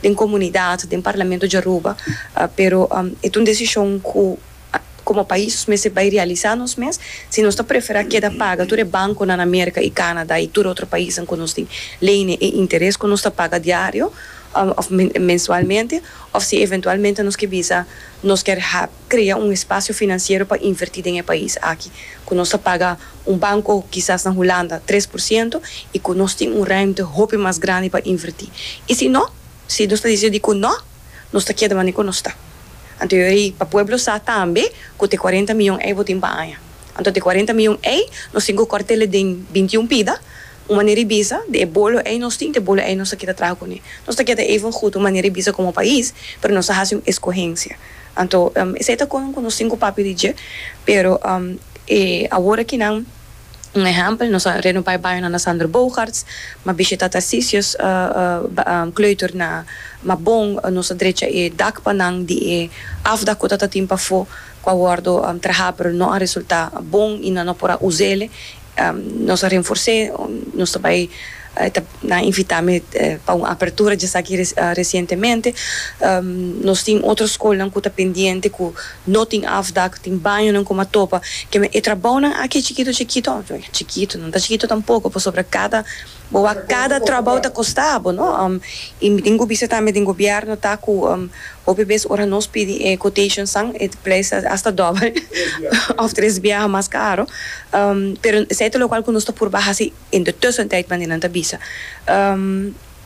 den comunidad, den Parlamento di Aruba, pero e ta un decision cu como pais nos mester bay realisa nos mes si nos ta prefera keda paga tur e banconan na America y Canada y tur otro paisnan cu nos tin leynan e interes cu nos ta paga diario of mensualmente of si eventualmente nos ke bisa nos ker crea un espacio financiero pa inverti den e pais aki cu nos ta paga un banco kisas na Hulanda tres por ciento y cu nos tin un ruimte hopi mas grandi pa inverti y si no si nos ta decidir cu no nos ta keda manera cu nos ta anto yo ey pa pueblo sa tambe cu t'e cuarenta miyon ey bo tin pa aña anto t'e cuarenta miyon ey nos tin cu cort'e den binti un pida Un manera di bisa, di e bolo ei nos tin, di e bolo ei nos ta kita traha kuné. Nos ta keda even gut un manera di bisa komo pais, pero nos a hasi un eskohensia. Anto, esei ta konan ku nos tin ku papia di dje, pero e awor aki nan, un ehèmpel, nos a reno bai baño na na Sander Boogaerts, mi a bishita Tarcisius Kleuter na Mabon, nos a drecha e dak pa nan di e afdak ku ta ta tin pafó, ku a wòrdu trahá pero no a resultá bon i nan no por a us'e. Nos a renfors'é, nos ta bai, e ta nan invitá mi pa un apertura djesaki resientemente. Nos tin otro skolnan ku ta pendiente ku no tin afdak, tin bañonan ku m'a topa, keme e trabounan aki chikito chikito, chikito, nan ta chikito tampoko, pasobra kada. Bo a cada trabao ta costa bo no y mi tin cu bisa tambe den gobierno ta cu hopi bes ora nos pidi e quotation san e prijs ta hasta dobel of tres biaha mas caro pero esey ta locual cu nos ta purba haci en de tussentijd manera nan ta bisa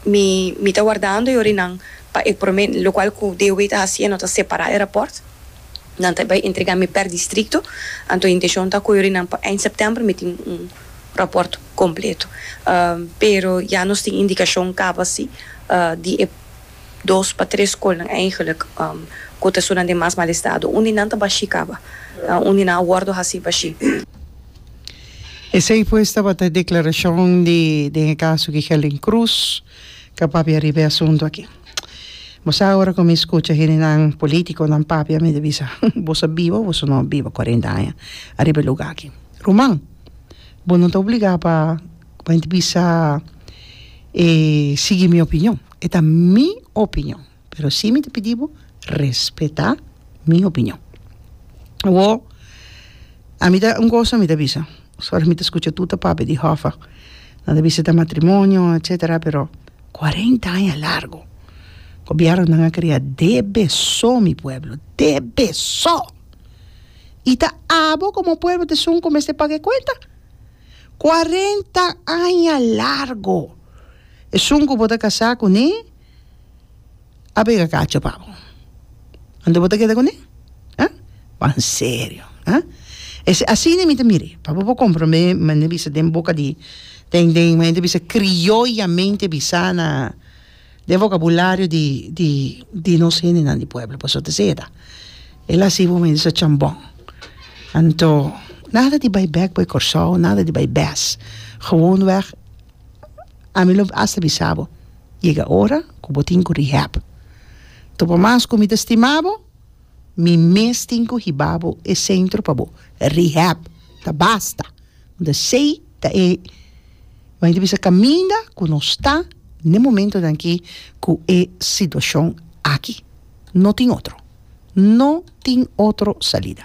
mi mi ta wardando yo rinan pa e prome locual cu DOW ta haciendo ta separa e rapport nan ta bay entrega mi per distrito anto e intencion ta cu yo rinan pa eind september mi tin un raport completo pero ya nos tin indicacion caba si di e dos pa tres scolnan eigenlic cu ta sunan den mas mal estado un di nan ta bashi caba un di nan a wordo haci bashi. Esey pues tabata e declaracion di den e caso di Helen Cruz ca papia riba e asunto aki. Bo sa ora cu mi scucha hendenan politiconan papia mi ta bisa boso a biba o boso no a biba cuarenta aña ariba e lugar aki. ruman, bo no ta obligá pa bo henter bisa e sigui mi opinion, e ta mi opinion, pero si mi ta pidi bo respetá mi opinion. Awor, ami ta un kos ami ta bisa, sor mi ta skucha tur ta papia di Hoffa, nan ta bisa ta matrimonio etsetera, pero kuarenta aña largu, gobièrnunan a krea debe so mi pueblo, debe so! i ta abo komo pueblo ta esun ku mester paga e kuenta? Kuarenta aña largu esun ku bo ta kasá kuné a bega kacha pa bo. Anto bo ta keda kuné? Ha? Ban serio, ha? Esei asina mi ta mir'é, pa bo por kompromé mane bisa den boka di den den mane ta bisa krioyamente bisá na. Den vocabulario di di di nos hendenan di pueblo paso ta seda el a si bo me disa chambon anto nada di bay bek bay Kòrsou nada di bay bes gewoon wèg ami lo hasta bisa bo yega ora ku bo tin ku rehab anto por mas ku mi ta stima bo mi mes tin ku hiba bo e centro pa bo rehab ta basta. Unda sei ta e bai ta bisa kaminda ku nos ta n'e momentunan aki ku e situashon aki. No tin otro. No tin otro salida.